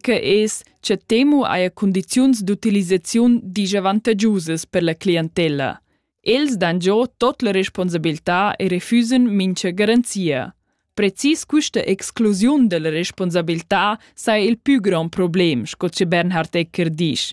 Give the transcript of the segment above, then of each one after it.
que es cha Temu haja cundiziuns d'utilisaziun disavantagiusas per la clientella. Els dan giò tot la responsabiltà e refüsen mincha garanzia. Precis quista exclusiun dalla responsabiltà saja il pü grand problem, sco che Bernhard Ecker disch,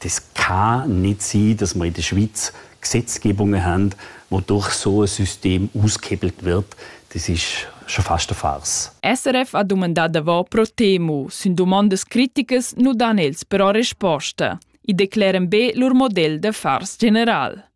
das kann nicht sein, dass wir in der Schweiz Gesetzgebungen haben, wo durch so ein System ausgehebelt wird. Das ist schon fast eine Farce. SRF ha dumandà davor pro Temu, sind domandas criticas nu dan els però resposta. I declaren be lur model de farce general.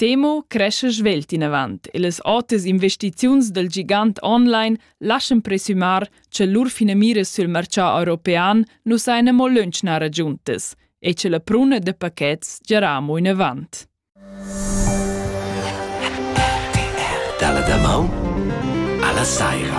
Temo crescha svelt inavant e las otas investiziuns dal gigant online laschan presumar cha lur finamira sül marchà european nu saja amo lönchnar agiuntas e cha la pruna da paquets giarà amo inavant. Dalla damaun alla saira.